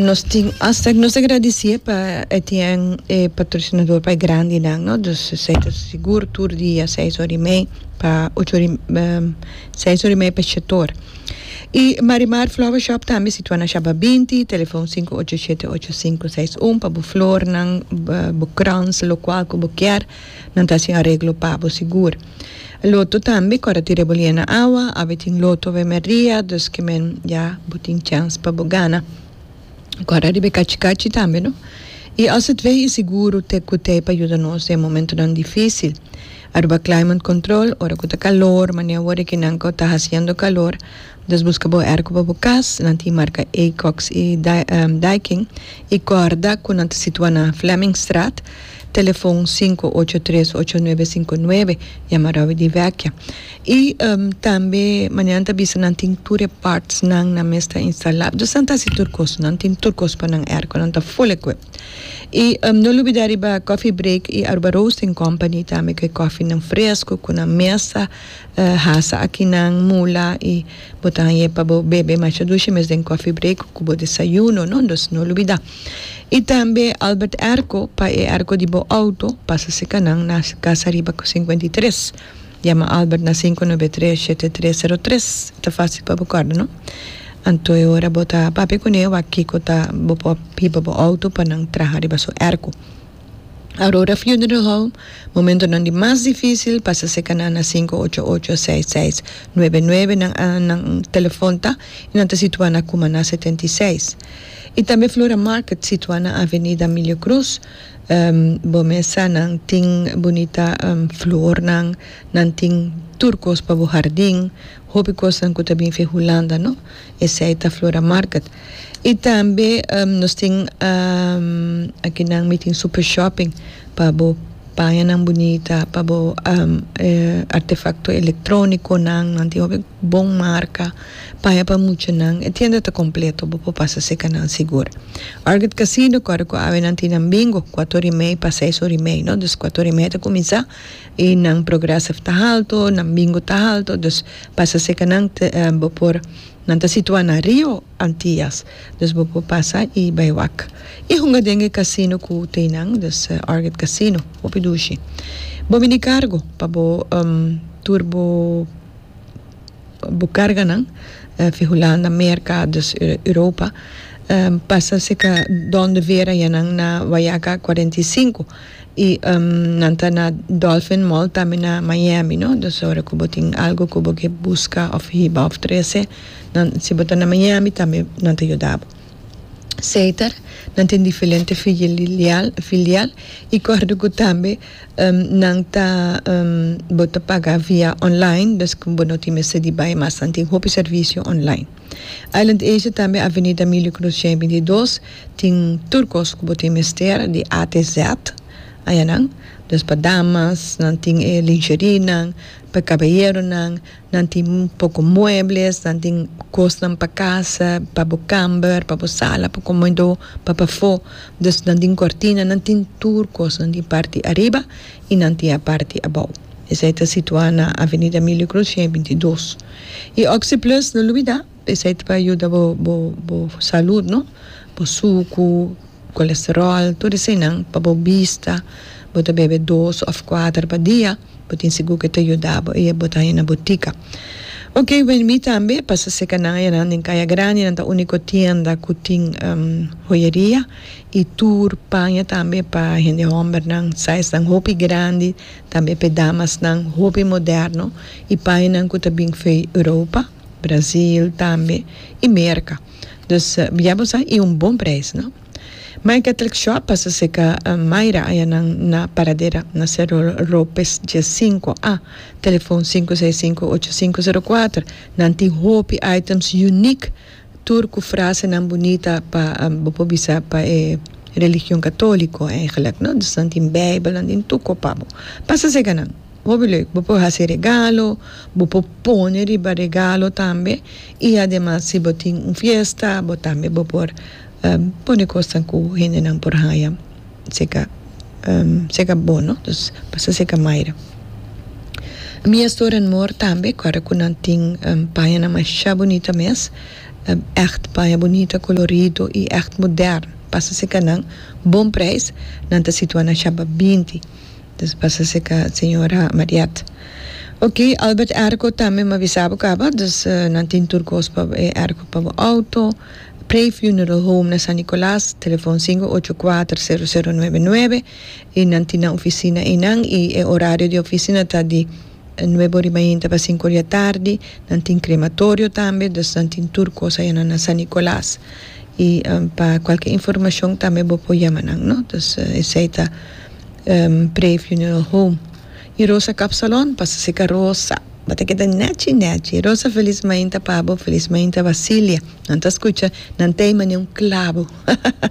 Nos tin asta nos ta gradisié pa Etienne e patrosinador pa e grandinan no dus esei ta sigur tur dia seis ora i mei pa ocho ora seis ora i mei pa Chetor i Marimar flower shop tambe situana shaba binti telefon sinku ocho shete ocho sinku seis un pa bo flornan bo krans lokual ku bo kier. Nan ta hasi areglo pa bo sigur. Loto tambe ku ora tin rebolié na awa, awe tin loto awe mer dia, dus ke men ya bo tin chèns pa bo gana. Ku ora riba e kachi kachi tambe no. I as et weh i siguru te ku tei pa yuda nos den e momentunan difísil. Aruba Climate Control, ora ku ta kalor, manera wor e kinan ku ta hasiendo kalor, Nos buska bo erko pa bo kas, nan tin marka Acox i Daikin i kòrda ku nan ta situá na Flemmingstraat, telefon sinku ocho tres ocho nuebe sinku nuebe, yama Robbie di Vecchia. I tambe manera nan ta bisa nan tin tur e pàrtsnan, nan mes ta instalá, dus nan ta hasi tur kos, nan tin tur kos pa nan erko, nan ta full equipped. I no lubidá riba Coffee Break i Aruba Roasting Company tambe ku e kòfinan fresku ku nan mesa. Hasa akinan mula y bo ta hañ'é pa bo bebe masha dushi mes den coffee break cu bo desayuno, no? Entonces no olbida. Y tambe Albert Airco pa e airco di bo auto pasa cerca nan na casa ariba cu cincuenta y tres. Yama Albert na cinco nuebe tres shete tres cero tres ta facil pa bo corda, no? Anto e ora bo ta papia cun'é wak kico ta bo por hiba bo auto pa nan traha riba su airco. Aurora Funeral Home, Momentonan di mas difícil pasa cerca nan na sinku ocho ocho seis seis nuebe nuebe nan nan telefon ta y nan ta situá na Cumaná setenta y seis. Y tambe Flora Market situá na Avenida Milio Cruz bo mesa nan tin bunita flornan nan tin tur cos pa bo hardin. Hopi cosnan cu ta bin fei Hulanda no. Esey ta Flora Market. Y tambe nos tin akinan mi tin Super Shopping pa bo pañanan bunita, pa bo artefacto electroniconan, nan tin hopi bon marca, paña pa muchanan. E tienda ta completo, bo por pasa cerca nan sigur. Argid Casino cu awe nan tin nan Bingo, cuator y mey pa seis ora y mey no. Dus cuator y mey ta cuminsa y nan progressive ta halto, nan bingo ta halto, dus pasa cerca nan bo por, nan ta situa na Rio Antillas, dus bo por pasa y bay wak y hunga den e casino cu tey nan, dus Orchid Casino, hopi dushi. Bo mini cargo pa bo tur bo bo carganan, fi Hulanda, Merca, dus Europa, pasa cerca donde Vera ya nan na Wayaca cuarenta y cinco. Y nan ta na Dolphin Mall tambe na Miami no, dus ora cu bo tin algo cu bo ke busca of hiba of trece nan si bo ta na Miami tambe nan ta yuda bo. Seiter nan tin difelente filial filial y kor di cu tambe nan ta bo ta paga via online, dus cu bo no tin mester di bay mas nan tin hopi servicio online. Island Asia tambe Avenida Milio Cruzien binti i dos tin tur kos ku bo tin mester di A te Z ayanan des pa damas nan tin e linjerinan pa kabayeronan nan tin poko muebles nan tin kosnan pa kasa pa bo kamber pa bo sala pa komoido pa pafó des nan tin kòrtina nan tin tur kos nan tin a parti ariba i nan tin a parti abou esei ta situá na Avenida Milio Cruzien binti i dos. Y Oxi Plus no lubida, esey ta pa yuda bo bo bo salud no, bo sucu, colesterol, tur eseynan, pa bo bista, bo ta bebe dos of cuater pa dia, bo tin sigur cu e ta yuda bo y bo ta haña na butica. Ok, wen mi tambe pasa seca nan ayanan den Caya Grandi, nan ta unico tienda cu tin hoyeria y tur paña tambe pa hende hombernan, size nan hopi grandi, tambe p'e damasnan hopi moderno i pañanan ku ta bin fei Europa, Brasil tambe i Merka. Dus bia bo sa i un bon preis no. My Catholic Shop pasa serka Myra ayanan na Paradera na Cerro Ropes dje sinku a, telefon sinku seis sinku ocho sinku sero kuater. Nan tin hopi items uniek Tur cu frasenan bunita pa bo por bisa pa e religion catolico eigenlijk no, dus nan tin bijbel nan tin tur cos pa bo pasa seca nan hopi leuk bo por haci regalo bo por pone riba regalo tambe y ademas si bo tin un fiesta bo tambe bo por pone cosnan cu hendenan por haya. seka seka bo no dus pasa seka maire mi a stora nmor tambe kòrda ku nan tin pañanan masha bunita mes ègt paña bunita kolorido i ègt mudèrn pasa seka nan bon preis nan ta situa na shaba binti dus pasa seka señora Marièt ok Albert Erko tambe mi a bisa bo kaba dus nan tin tur kos pa e Erko pa bo outo. Prey Funeral Home na San Nicolas, telefon sinku ocho kuater sero sero nuebe nuebe, i nan tin nan ofisina einan i e orario di e ofisina ta di nuebe ora i mainti tabata sinku ora di atardi, nan tin krematorio tambe, dus nan tin tur kos ayanan na San Nicolas i pa kualke informashon tambe bo por yama nan no, dus esei ta Prey Funeral Home. Y Rosa kap salon pa sa seka Rosa ba ta keda nechi nechi Rosa felis mainta Pabo felis mainta Basilia nan ta skucha nan tei mane un klabo hahaha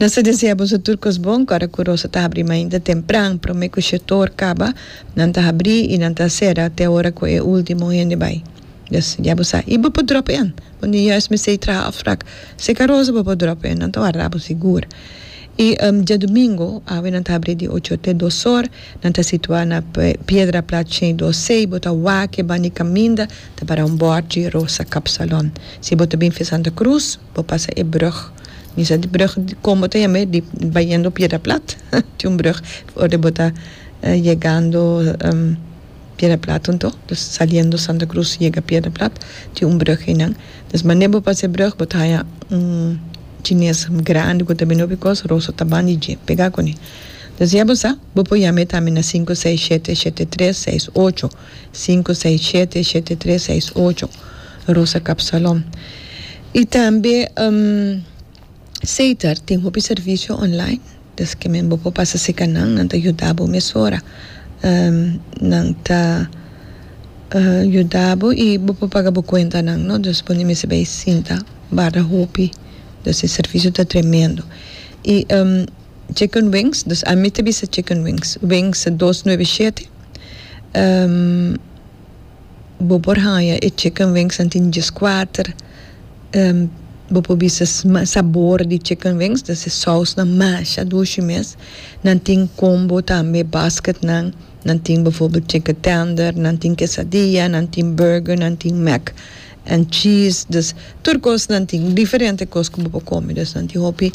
nan sa desea boso tur kos bon ku ora ku Rosa ta habri mainta tempran prome ku shetor kaba nan ta habri y nan ta sera te ora ku e ultimo hende bai dus ya bo sa y bo por drop en bo ni juis mester y traha afrak seka Rosa bo por drop en nan ta warda bo sigur y diadomingo awe nan ta habri di ocho te dos or. Nan ta situá na piedra plat shei do sei bo ta wake bani kaminda ta para un bòrd dje Rosa Kapsalon. Si bo ta bin via Santa Cruz bo pasa e brug misa di brug kon bo ta yam'e di bayendo piedra plat tin un brug ora bo ta yegando piedra plat tun to dus saliendo Santa Cruz yega piedra plat tin un brug einan dus manera bo pasa e brug bo ta haña un chines grandi ku ta bini hopi kos Rosa ta bandi dje pega kuni. Ta siña bo sa? Bo por yama e tambe na sinku seis shete shete tres seis ocho, sinku seis shete shete tres seis ocho, Rosa Kapsalon. I tambe Seitar tin hopi servisio online, des ke men bo por pasa seka nan, nan ta yuda bo mesora. Nan ta yuda bo i bo por paga bo kuentanan, no? Dus bo no mester bay sinta barda hopi, dus e servisio ta tremendo. I Chicken wings, dus ami ta bisa chicken wings, wings dos nueve y shete, bo por haya e chicken wings nan tin djes kuater, bo por bisa sabor di chicken wings dus e sous nan masha dushi mes, nan tin combo tambe basket nan, nan tin befo chicken tender, nan tin quesadilla, nan tin burger, nan tin mac. And cheese dus tur cosnan tin diferente cos cu bo por come dus nan tin hopi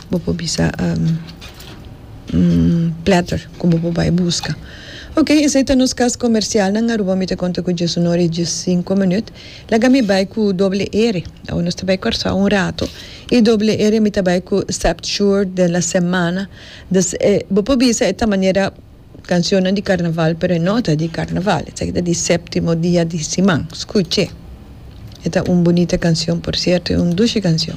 bo por bisa platter cu bo por bay busca ok esey ta nos cas comercial nan Aruba mi ta conta cu Jesu no reach di cinco minut laga mi bay cu doble ere awe nos ta bay Curaçao un rato y doble ere mi ta bay cu septuor de la semana dus bo por bisa e ta manera Cancionnan di carnaval pero e no ta di carnaval esaki ta di septimo dia di siman, scuche e ta un bunita cancion por cierto e un dushi cancion.